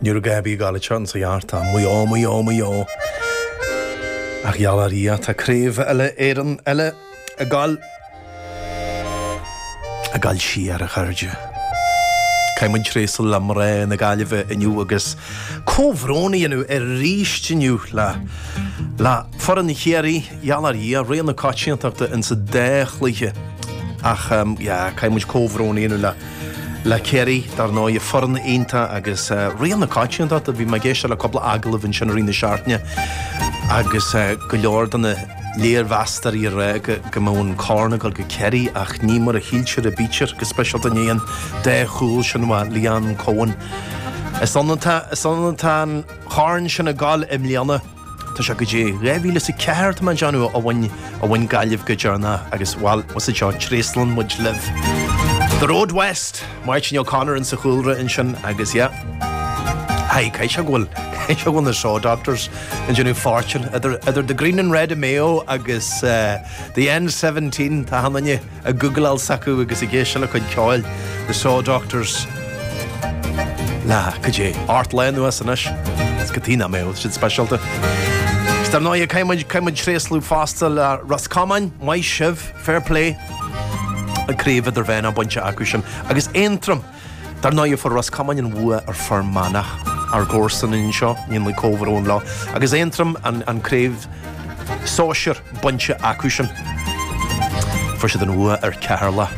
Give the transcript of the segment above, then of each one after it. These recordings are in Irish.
Nuair a gabhadh í go deireanach ansin, 2004, mm, mm, mm. Ach geallaim do Dhia tá craobh eile Éireann eile a gabhail, a gabhail siar a chairde. Caithfidh muid tréaslú le mná na Gaillimhe inniu agus comhbhrón a dhéanamh arís inniu le, le foireann Chiarraí, geallaim do Dhia, rogha na coitiantachta insa dá chluiche. Ach, yeah, caithfidh muid comhbhrón a dhéanamh le, le Ciarraí, dar ndóigh, foireann iontach agus rogha na coitiantachta a bhí mé ag éisteacht le cúpla agallamh ansin i rith na seachtaine agus go leor de na léirmheastóirí a rá go mbeadh an corn ag dul go Ciarraí ach ní mar a shíltear a bítear, go speisialta i ndiaidh an dá chúl sin a bhuaigh Leanne Coen. Is anonn atá an corn sin ag dul i mbliana. Tá sé, cad é, 2004 tá mé ag déanamh a bhain a bhain Gaillimh go deireanach agus bhuel was it seo tréaslann muid libh. The Road West, Máirtín O'Connor in sa chúlra ansin agus yeah. Haigh cá bhfios go bhfuil cá bhfios go bhfuil na Saw Doctors ag déanamh fáirteanna idir idir The Green and Red of Mayo agus eh, The N17 tá mé cinnte. ag googleáil s'acu agus ag éisteacht lena gcuid ceoil, The Saw Doctors, na, cad é, ardlá inniu anois, is go dtí ná mé, rud sin speisialta. Is dar ndóigh, caithfidh muid, caithfidh muid tréaslú fosta le Ros Comáin, maith sibh, fair play, an craobh idirmheánach bainte acusan, agus Aontroim. Dar ndóigh, fuair Ros Comáin an bhuaidh ar Fhear Manach, ár gcomharsana anseo, ní mé comhbhrón leo, agus Aontroim, an craobh sóisir bainte acusan. Fuair siad an bhuaidh ar Cheatharlach.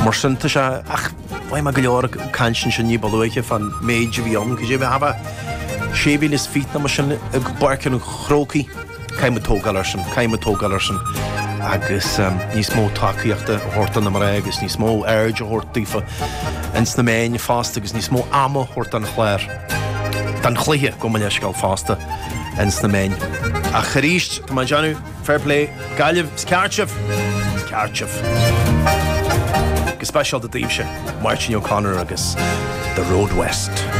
Mar sin, tá sé, ach bhí mé go leor ag caint ansin ní ba luaithe fan méid a bhí ann, cad é, b'fhéidir, sé mhíle is fiche nó mar sin i bPáirc an Chrócaigh. Caithfidh muid tógáil air sin, caithfidh muid tógáil air sin agus níos mó tacaíochta a thabhairt do na mná agus níos mó aird a thabhairt daofa ins na meáin fosta agus níos mó ama a thabhairt don chlár, don chluiche gabh mo leithscéal fosta ins na meáin. Ach arís, tá mé ag déanamh fair play, Gaillimh, is ceart sibh, is ceart sibh. Go speisialta daoibhse, Máirtín O'Connor agus The Road West.